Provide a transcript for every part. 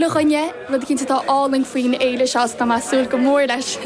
chuile dhuine, rud eicínt atá álainn faoin fhéile seo is tá mé ag súil go mór leis.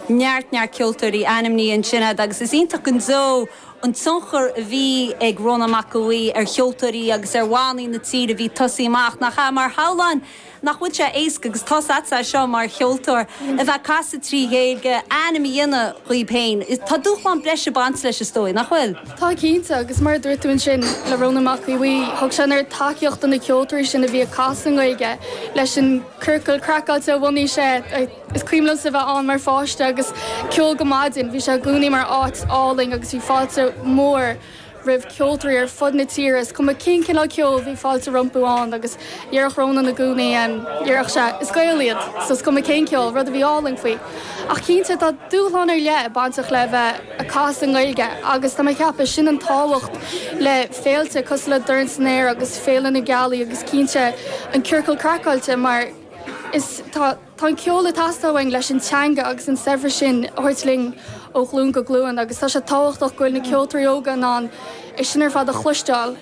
neart neart ceoltóirí ainmnithe ansin agad agus is iontach go deo an tionchar a bhí ag Rónán Mac Aodha Bhuí ar cheoltóirí agus ar bhannaí na tíre a bhí ag tosaí amach nach ea mar shamhlóinn nach bhfuil sé éasca agus tá's a'tsa é seo mar cheoltóir a bheith ag casadh trí Ghaeilge ainm a dhéanamh díbh féin tá dúshlán breise ag baint leis is dóigh nach bhfuil? Tá cinnte, agus mar a dúirt tú ansin le Rónán Mac Aodha Bhuí, thug sé an oiread tacaíocht do na ceoltóirí sin a bhí ag casadh i nGaeilge leis an Ciorcal Craiceáilte a bhunaigh sé. Is cuimhin liomsa bheith ann mar pháiste agus ceol go maidin. Bhí sé i gcónaí mar áit álainn agus bhí fáilte mhór roimh cheoltóirí ar fud na tíre, is cuma cén cineál ceoil, bhí fáilte rompu ann. Déarfadh Rónán i gcónaí, em, déarfadh sé, is Gaeil iad so is cuma cén ceol, rud a bhí álainn faoi. Ach cinnte, tá dúshlán ar leith bainteach le bheith a' casadh i nGaeilge agus tá mé a' ceapadh, sin an tábhacht le féilte cosúil le Dorn San Aer agus Féile na Gealaí agus cinnte an Ciorcal Craiceáilte mar is, tá. Tá an ceol ag teastáil uainn leis an teanga agus an saibhreas sin a thabhairt linn ó ghlúin go glúin agus tá sé tábhachtach go bhfuil na ceoltóirí óga in ann é sin ar fad a chloisteáil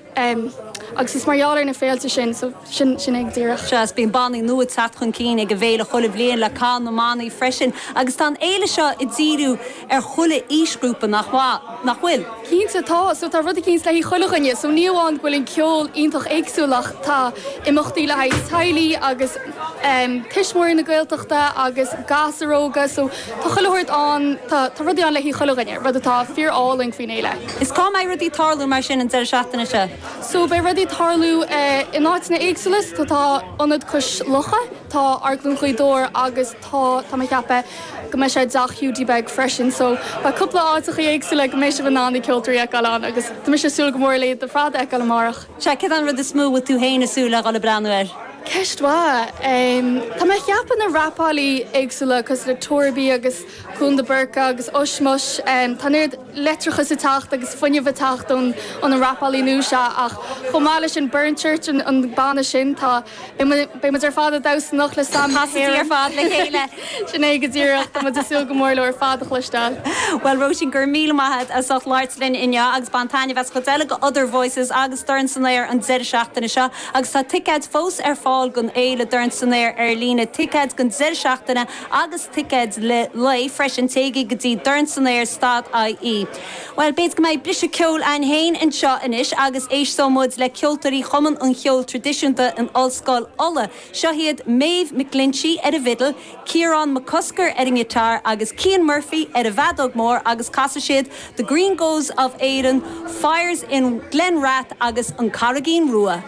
agus is mar gheall ar na féilte sin, so sin sin é díreach. Sea, is bíonn bannaí nua ag teacht chun cinn ag an bhféile chuile bhliain le Cath na mBannaí freisin agus tá an fhéile seo ag díriú, ar chuile aoisghrúpa nach bhfuil. Cinnte, tá. So, tá rud eicínt le haghaidh chuile dhuine. So, ní amháin go bhfuil an ceol iontach éagsúil ach tá imeachtaí le haghaidh teaghlaigh agus em tuismitheoirí na Gaeltachta agus gasúir óga so tá chuile shórt ann, tá rudaí ann le haghaidh chuile dhuine, rud atá fíor álainn faoin fhéile. Is cá mbeidh rudaí ag tarlú mar sin an deireadh seachtaine seo? So, beidh rudaí ag tarlú eh in áiteanna éagsúla so tá Ionad Cois Locha, tá Amharclann Ghaoth Dobhair agus. tá, tá mé a cheapadh go mbeidh sé i dTeach Hiúdaí Beag freisin so tá cúpla áiteachaí éagsúla go mbeidh sibh in ann na ceoltóirí a fheiceáil ann agus tá mise ag súil go mór le iad ar fad a fheiceáil amárach. Sea, céard é an rud is mó a bhfuil tú féin ag súil le dhul ag breathnú air? Ceist mhaith. Em, tá mé a cheapadh na rapálaí éagsúla cosúil le Torby agus Koen De Burca agus Ushmush, em, tá an oiread leictreachais ag teacht agus fuinneamh ag teacht ón, ó na rapálaí nua seo ach chomh maith leis sin Burnchurch an, an banna sin, tá, Beidh muid ar fad ag damhsa anocht le Sam na hÉireann. Casaidí ar fad le chéile. Sin é go díreach. Tá muid ag súil go mór leo ar fad a chloisteáil. Bhuel, Róisín, go raibh míle maith agat as ucht labhairt linn inniu agus bain taitneamh as an gcuid eile de Other Voices agus Dorn San Aer an deireadh seachtaine seo. Agus tá ticéid fós ar fáil don fhéile Dorn San Aer ar líne, ticéid don deireadh seachtaine agus ticéid lae freisin. Téigí go dtí dornsanAer dot ie. Bhuel, b'fhéidir go mbeidh briseadh ceoil againn féin anseo anois agus éistfimid le ceoltóirí Chumann an Cheoil Traidisiúnta in Ollscoil Uladh. Seo iad Maeve McGlinchey ar an bhfidil, Ciarán McCusker ar an ngiotár agus Cian Murphy ar an bhfeadóg mór agus casfaidh siad The Green Groves of Erin, Fires in Glen Rath agus An Carraigín Rua.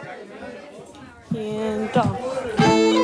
Cian Duff.